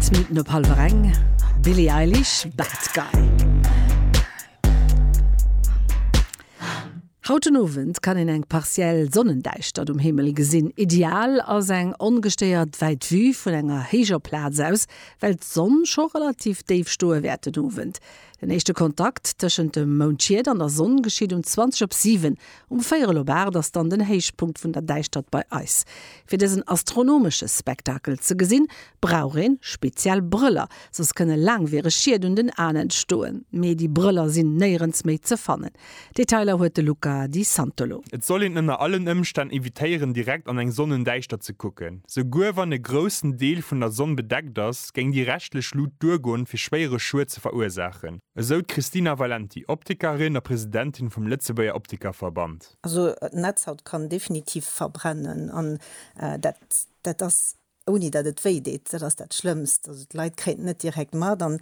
Zwee Minutten op hallwer eng. Billie Eilish, Bad Guy. Haut den Owend kann een eng partiell Sonnendäischtert um Himmel gesinn. Ideal ass eng ongestéiert wäit Vue vun enger héijer Plaz aus, well d'Sonn scho relativ déif stoe wäert den Owend. Den éischte Kontakt tëschent dem Moundschiet an der Sonn geschitt um 20 op 7. Um véierel op 8 ass dann den Héichpunkt vun der Däischtert bei eis. Fir dësen astronomesche Spektakel ze gesinn, brauch een speziell Brëller, soss kënne laangwiereg Schied un den Aen entstoen. Mee déi Brëller sinn néierens méi ze fannen. Detailer huet de Luca Di Santolo. Et soll een ënner allen Ëmstänn evitéieren direkt an eng Sonnendäischtert ze kucken. Souguer wann e groussen Deel vun der Sonn bedeckt ass, géing déi reschtlech Lut duergoen, fir schwéiere Schued ze verursaachen, esou d'Christina Valenti, Optikerin a Presidentin vum Lëtzebuerger Optikerverband. Also d'Netzhaut kann definitiv verbrennen an dat ass ouni datt et wéi deet, dat ass dat Schlëmmst. Also d'Leit kréien et net direkt mat an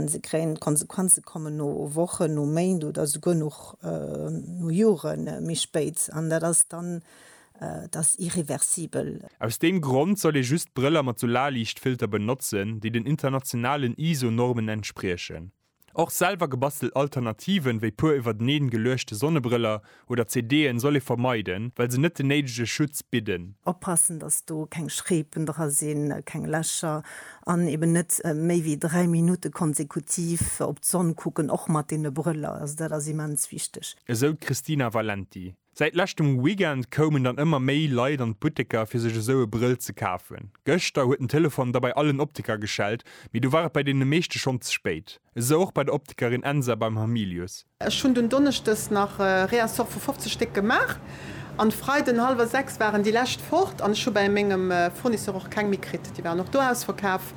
se kréien d'Konsequenze kommen no Wochen, no Méint oder souguer och no Jore méi spéit an dat ass dann, et ass irreversibel. Aus deem Grond soll ee just Brëller mat Solarliichtfilter benotzen, déi den internationalen ISO-Normen entspriechen. Och selwer gebastelt Alternativen, wéi puer iwwerteneen geluechte Sonnebrëller oder CD'en, soll ee vermeiden, well se net den néidege Schutz bidden. Oppassen, dass do keng Schreepen dra sinn, keng Lächer, an eben net méi wéi 3 Minutte konsekutiv op d'Sonn kucken, och mat deene Brëller. Also dat ass immens wichteg. Esou d'Christina Valenti. Säit leschtem Weekend koumen dann ëmmer méi Leit an d'Butteker fir sech esou e Brëll ze kafen. Gëschter huet den Telefon da bei allen Optiker geschellt, mee du war et bei deene meeschte schonn ze spéit. Esou och bei der Optikerin Ensa beim Hamilius. Ech hunn dunn Donneschdes nach e Réassort vu 50 Stéck gemaach an Freiden um hallwer 6 waren déi lescht fort an ech hu bei mengem Fournisseur och keng méi kritt. Déi waren och do ausverkaf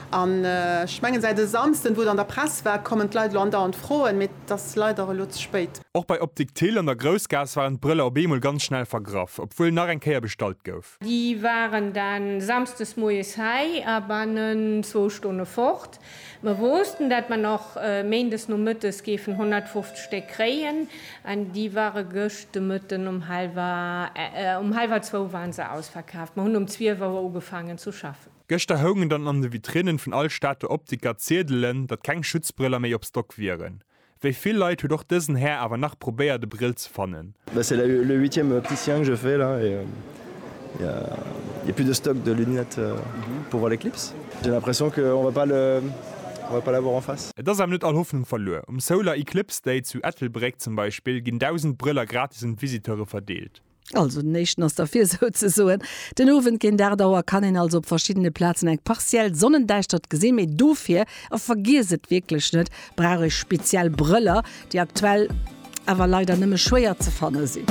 an ech mengen säit e Samsden, wou et an der Press war, kommen d'Leit elo andauernd froen, mee 't ass leider elo ze spéit. Och bei Optik Thill an der Groussgaass waren d'Brëller op eemol ganz schnell vergraff, obwuel nach eng Kéier bestallt gouf. Déi waren dann Samsdes moies hei a bannen zwou Stonne fort. Mer woossten, dat mer nach Méindes Nomëttes géifen 150 Stéck kréien, an déi ware gëscht de Mëtten um hallwer, um hallwer zwou waren se ausverkaaft. Mer hunn um zwielf Auer ugefaangen zu schaffen. Gëschter houngen dann an de Vitrinnen vun all Stater Optiker Ziedelen, datt keng Schutzbrëller méi op Stock wieren. Wéi vill Leit huet och dësen Här awer nach probéiert e Brill ze fannen. Mais c'est le le huitième opticien que je fais là et il y a il y a plus de stock de lunettes pour voir l'éclipse. J'ai l'impression que on va pas le on va pas l'avoir en face. Et ass awer net all Hoffnung verluer. Um Solar Eclipse Day zu Ettelbréck zum Beispill ginn 1.000 Brëller gratis un d'Visiteure verdeelt. Also den éischten ass derfir souzesoen. Den Owend géint 8 Auer kann een also op verschiddene Plazen eng partiell Sonnendäischtert gesinn, mee dofir, a vergiesst et wierklech net, brauch ee speziell Brëller, déi aktuell awer leider nëmme schwéier ze fanne sinn.